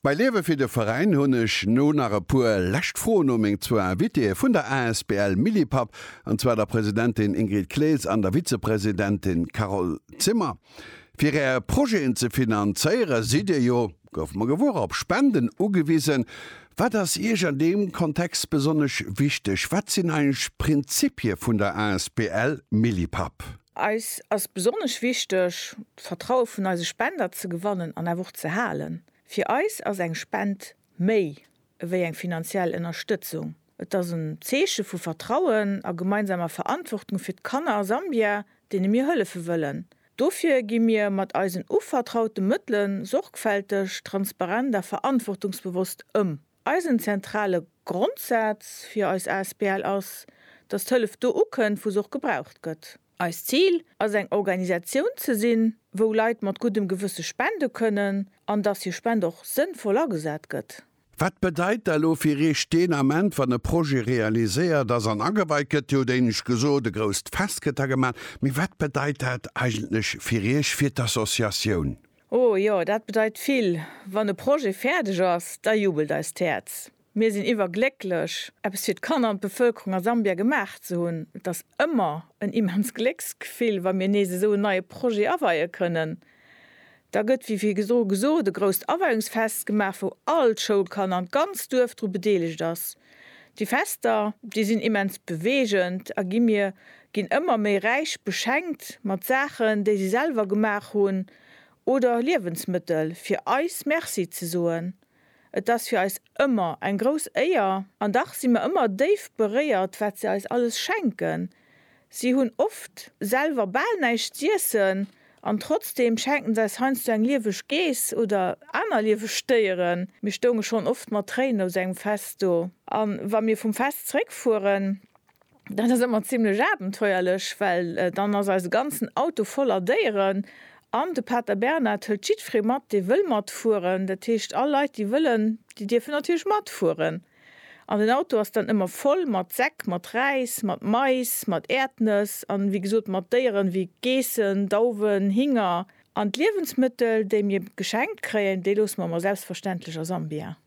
Bei Liewe fir de Veräin hunn ech no nach e puer lescht Froen u meng zwou Invitéë vun der asbl Millipap, an zwar der Presidentin Ingrid Clees an der Vizepresidentin Carole Zimmer. Fir Är Projeten ze finanzéiere sidd Dir jo, goufe mer gewuer, op Spenden ugewisen. Wat ass Iech an deem Kontext besonnesch wichteg? Wat sinn eigentlech d'Prinzippie vun der asbl Millipap? Eis ass besonnesch wichteg, D'Vertraue vun eise Spender ze gewannen an awer och ze halen. Fir eis ass eng Spend méi ewéi eng finanziell Ënnerstëtzung. Et ass en Zeeche vu Vertrauen a gemeinsamer Verantwortung fir d'Kanner a Sambia, deene mir hëllefe wëllen. Dofir gi mir mat eisen uvertraute Mëttele sorgfälteg, transparent a verantwortungsbewosst ëm. Eisen zentrale Grondsaz fir eis asbl ass, dass d'Hëllef do ukënnt, wou se och gebraucht gëtt. Eist Zil ass eng Organisatioun ze sinn, wou Leit mat guddem Gewësse spende kënnen an dass hir Spend och sënnvoll agesat gëtt. Wat bedeit da lo fir Iech deen Ament, wann e Projet realiséiert ass an ageweit gëtt? Dir hutt éinescht gesot, e grousst Fest gëtt da gemaach, mee wat bedeit dat eigentlech fir Iech, fir d'Associatioun? Oh jo, dat bedeit vill. Wann e Projet fäerdeg ass, da jubelt eist Häerz. Mir sinn iwwerglécklech, eppes fir d'Kanner an d'Bevëlkerung a Sambia gemaach ze hunn. Et ass ëmmer en immens Glécksgefill, wa mir nees esou en neie Projet aweie kënnen. Da gëtt, wéi virdru gesot, e grousst Aweiungsfest gemaach, wou all d'Schoulkanner an d'ganzt Duerf dru bedeelegt ass. Déi Fester, déi sinn immens beweegend a gi mir ginn ëmmer méi räich beschenkt mat Saachen, déi si selwer gemaach hunn, oder Liewensmëttel, fir eis Merci ze soen. Et ass fir eis ëmmer eng grouss Éier, an dach si mer ëmmer déif beréiert, wat se eis alles schenken. Si hunn oft selwer bal näischt z'iessen, an trotzdeem schenken se eis heiansdo eng lieweg Geess oder aner lieweg Déieren. Mir stounge schonn oft mat Tréinen aus engem Fest do, a wa mir vum Fest zréckfueren, Dat ass ëmmer zimlech abenteuerlech, well dann ass eise ganzen Auto voller Déieren an de Pater Bernhard hëlt jiddweree mat, dee wëll matfueren. Dat heescht, all Leit, déi wëllen, déi dierfen natierlech matfueren. An den Auto ass dann ëmmer voll mat Säck, mat Räis, mat Mais, mat Äerdnëss an, wéi gesot, mat Déieren, wéi Geessen, Dauwen, Hinger. An d'Liewensmëttel, déi mir geschenkt kréien, déi loosse mer mer selbstverständlech a Sambia.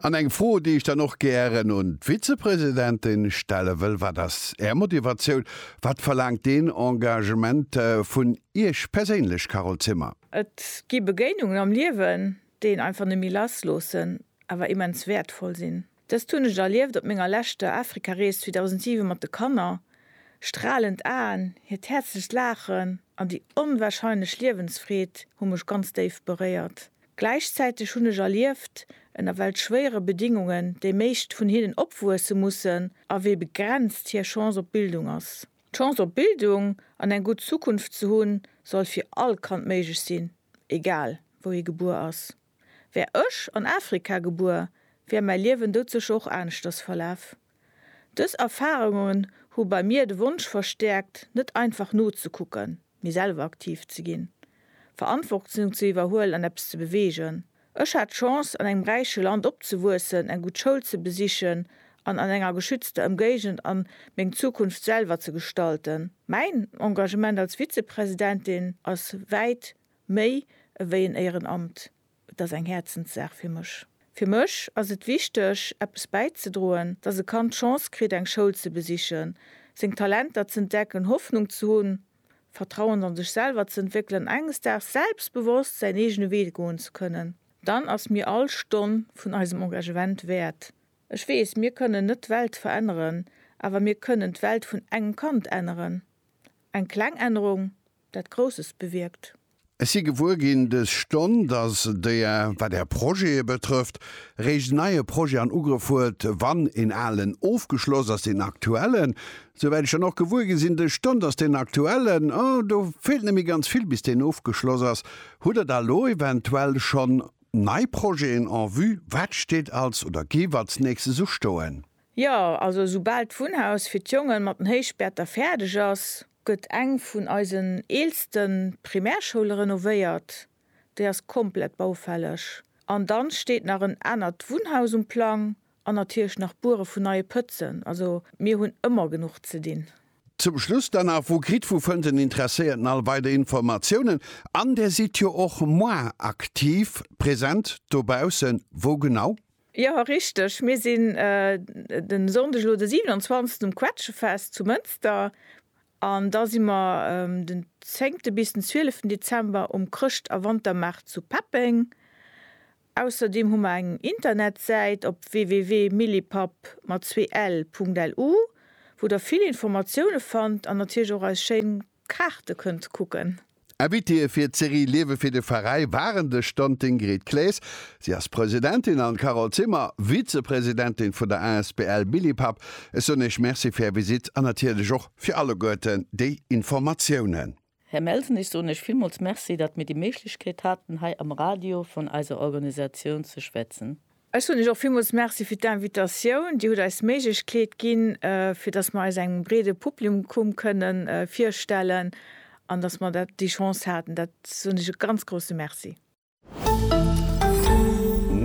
An eng Fro, déi ech dann och gären un d'Vizepresidentin stelle wëll, Wat ass Är Motivatioun? Wat verlaangt deen Engagement vun Iech perséinlech, Carole Zimmer? Et gi Begéinungen am Liewen, déi een einfach net méi lassloossen, awer immens wäertvoll sinn. Dëst hunn ech erlieft op menger leschter Afrikarees 2007 mat de Kanner. Stralend Aen, hiert häerzlecht Laachen an déi onwarscheinlech Liewensfreed hu mech ganz déif beréiert. Gläichzäiteg hunn ech erlieft, ënner welch schwéiere Bedingungen déi meescht vun hinnen opwuesse mussen a wéi begrenzt hir Chance op Bildung ass. D'Chance op Bildung an eng gutt Zukunft ze hunn, soll fir all Kand méiglech sinn, egal wou hie gebuer ass. Wär ech an Afrika gebuer, wär mäi Liewen doutsécher och aneschters verlaf. Dës Erfarungen hu bei mir de Wonsch verstäerkt, net einfach nozekucken, mee selwer aktiv ze ginn, Verantwortung ze iwwerhuelen an eppes ze beweegen. Ech hat d'Chance, an engem räiche Land opzewuessen, eng gutt Schoul ze besichen an an enger geschützter Ëmgéigend an meng Zukunft selwer ze gestalten. Mäin Engagement als Vizepresidentin ass wäit méi ewéi en Éierenamt. Et ass eng Häerzenssaach fir mech. Fir mech ass et wichteg, eppes bäizedroen, dass e Kand d'Chance kritt, eng Schoul ze besichen, seng Talenter z'entdecken, Hoffnung ze hunn, Vertrauen a sech selwer ze entwéckelen an enges Daags selbstbewosst säin eegene Wee goen ze kënnen. Dann ass mir all Stonn vun eisem Engagement wäert. Ech weess, mir kënnen net d'Welt veränneren, awer mir kënnen d'Welt vun engem Kand änneren. Eng kleng Ännerung, dat Grousses bewierkt. Ech si gewuer ginn dës Stonn, dass Der, wat Är Projete betrëfft, réischt en neie Projet an Ugrëff huet, wann een alen ofgeschloss ass, deen aktuellen, souwäit ech dann och gewuer gi sinn dës Stonn, dass deen aktuellen, oh, do feelt net méi ganz vill, bis deen ofgeschloss ass. Hutt Der da elo eventuell schonn nei Projeten en vue? Wat steet als oder géif als Nächstes ustoen? Jo, also esoubal d'Wunnhaus fir d'Jongen mat den Héichbäerter fäerdeg ass, gëtt eng vun eisen eelste Primärschoule renovéiert, déi ass komplett baufälleg, an dann steet nach en anert Wunnhaus um Plang an natierlech nach d'Buere vun neie Pëtzen. Also mir hunn ëmmer genuch ze dinn. Zum Schluss dann nach, Wou kritt, wou fënnt den Interesséierten all weider Informatiounen? An Där sidd jo och moi aktiv present dobaussen, wou genau? Jo richteg, mir sinn den Sonndeg elo de 27 um Quetschefest zu Mënster an da si mer den 10 bis den 12 Dezember um Chrëscht a Wantermaart zu Peppeng. Ausserdem hu mer eng Internetsäit op www.millipap mat zwee ell Punkt LU wou der vill Informatioune fannt an natierlech och eis schéin Kaarte kënnt kucken. Invitéë fir d'Serie Liewe fir de Veräi waren de Stand d'Ingrid Claes, si ass Presidentin, an d'Carole Zimmer, Vizepresidentin vun der Asbl Billipapp. Ech soen Iech Merci fir Är Visite an natierlech och fir alleguerten déi Informatiounen. Här Melsen, ech soen Iech villmools Merci, datt mir déi Méiglechkeet haten, hei am Radio vun eiser Organisatioun ze schwätzen. Ech soen Iech och villmools Merci fir d'Invitatioun. Dir hutt eis d'Méiglechkeet ginn, fir dass mer eis engem breede Publikum kënne virstellen an dass mer dat, déi Chance haten. Dat soen Iech e ganz grousse Merci.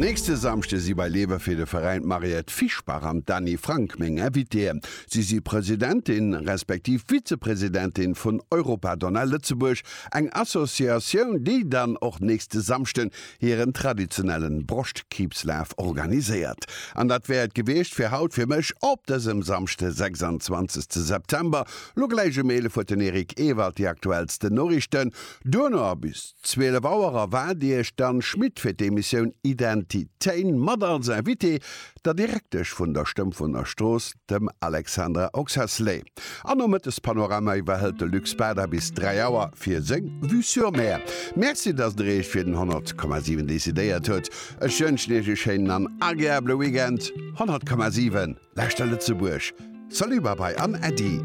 Nächste Samschde si bei Lewe fir de Veräin d'Mariette Fischbach an d'Dany Frank meng Invitéeën. Si si Presidentin, respektiv Vizepresidentin vun Europa Donna Lëtzebuerg, eng Associatioun, déi dann och nächste Samschden hiren traditionellen Broschtkriibslaf organiséiert. An dat wär et gewiescht fir haut fir mech op dësem Samschde 26 te September. Lo gläich um 11 huet den Eric Ewald déi aktuellsten Noriichten. Duerno a bis 12 Auer erwaart Iech d'Anne Schmit fir d'Emissioun Identitéin mat als Invitée der Direktesch vun der Stëmfener Strooss, dem Alexandra Oxacelay. An nom Mëttespanorama iwwerhëlt de Luc Spada bis 3 Auer fir seng Vue sur Mer. Merci, datt Der Iech fir den 100,7 decidéiert hutt. Ech wënschen Iech e schéinen an agreabele Weekend. 100,7, Lauschter Lëtzebuerg! Salut, Babai an Äddi!